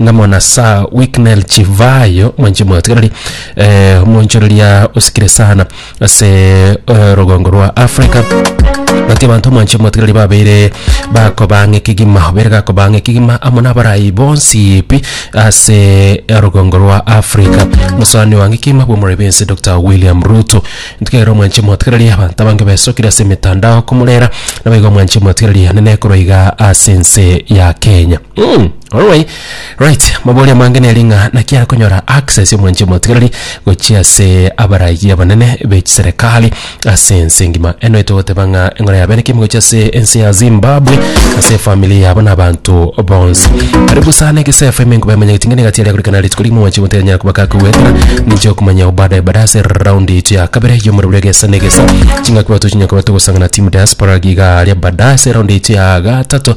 nga mwana Sir Wicknell Chivayo mwanche mwatigarari eh, omonchoreria osikire sana ase eh, rogongo rwa Africa gati abanto mwanche mwatigarari babeire bakobanga ekegima obere gakobanga ekegima amo nabarayi bonsi pi ase eh, rogongo rwa Africa musani wange ekegima bwomorori bense Dr. William Ruto ntikero mwanche mwatigarari abanto abange besokire ase emetandao komorera nabaigo mwanche mwatigarari nene ekoroiga ase ense ya Kenya Umm oroway right mabori amange nere ng'a naki arakonyora access omwanchi omotigareri gochia ase abaragia abanene bechiserekari ase ense engima eno etogoteba ng'a eng'ora yabe naki ime gochia ase ense ya Zimbabwe ase efamiri yabo na abanto bonsi aria busa ane egesefa ime nkoba emanyete ng'a niga tiaria gorekana rituko rigima omwanchi omotiga nyara koba kakoegwekana ninche okomanya ao baadaye baadaye ase round eito ya kabere ya omorero bwa egesa na egesa chingaki bato chinyara koba togosangana team diaspora iga aria baadaye ase round eito ya gatato.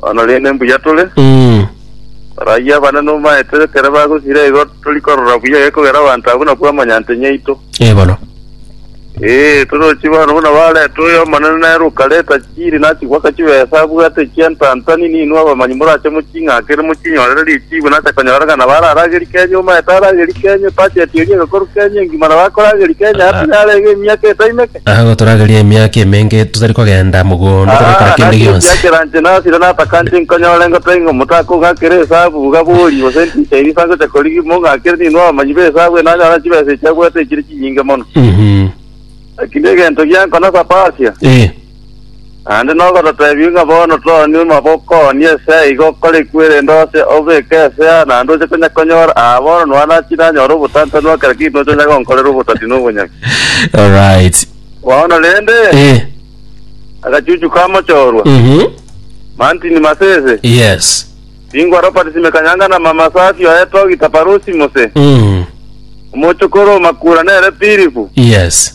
Bono rende mbuya tore, Mm. barayio abana nomaete ekero bagosira igo tori korora buya gekogera abanto abwo nabwo amanyante nyaito. Eh, bono. Ee, torochi bono buna bareta oyo omonene nere okareta chiri nachigwaka chibesa abwate echia ntantani ninwe abamanyi morache moching'akere mochinyorere richibu nacha konyora ng'a nabo araragerie Kenya omaete aragerie Kenya, budget eria egakorwa Kenya engima nabo akorageria Kenya ase yarenge emiaka etaimeke. Agwo toragerie emiaka emenge totari kogenda mogondo tore kera kende gionsi. Chiakeranche nasire natakanche nkonyore ngotebie ng'a omotaka ong'akere esabu iga bori gose ntiche erisa ngocha korigia ime ong'akere ninwe abamanyi b'esabu eye nanyore chibesa echi agoeta echire chinyinge mono. Eki negento giankonasa Persia. Ee. Naende nogototeebie ng'a bono toni omaboko onye ase aiga okorekwe erinde oche obeke ase aa naende oche konya konyora aa bono nonya nachi nanyore obotantanu o kera kintu nocha onya gonkorera obotati na obonyami. Alright. Bono rende Eh. agachuchu ka mochorwa Mhm. Martin Masese Yes. Bingwa Robert Simekanyanga na Mama Safi oye Togi Taparusi Mose Mm. omochokoro o Makura nere Philip Yes.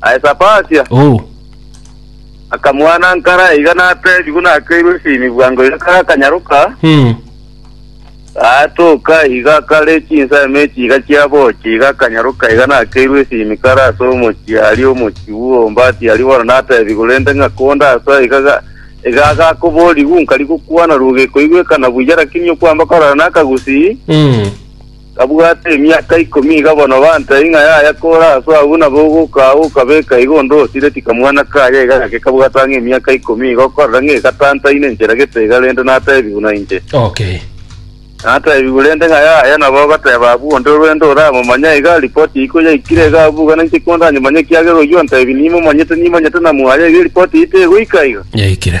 Aye Sapasia Oo. akamwana nkara iga nateebigwe nakeirwe esini bwango iga kare akanyaroka, Mm. gaatoka iga kare chinsemo echi iga chiabochia iga akanyaroka iga nakeirwe esini kare ase omochie aria omochie bw'obombati aria bono nateebigwe rende ng'a konde asa iga ga- iga agakoborigwe nkari gokwana rugo ekoigwekana buya rakini okwamba korara nakagusii Mm. Gabwate emiaka ikomi iga bono banta ing'a yaya kore aso abwo nabo ogoka ago okabeka iga onde osire tikamwana kaya iga gake kabwata ng'a emiaka ikomi iga okorera ng'a igatantaine nchera gete iga rende natebigwe nainche Okay. natebigwe rende ng'a yaya nabo ogoteba abwo onde orwende oramomanya iga ripoti iko yaikire iga abwo iga nainche kondanyomanye ekiagera oyio ontebi nimomanyete nimanyete na mwaya iga eripoti eye tegoika iga Yaikire.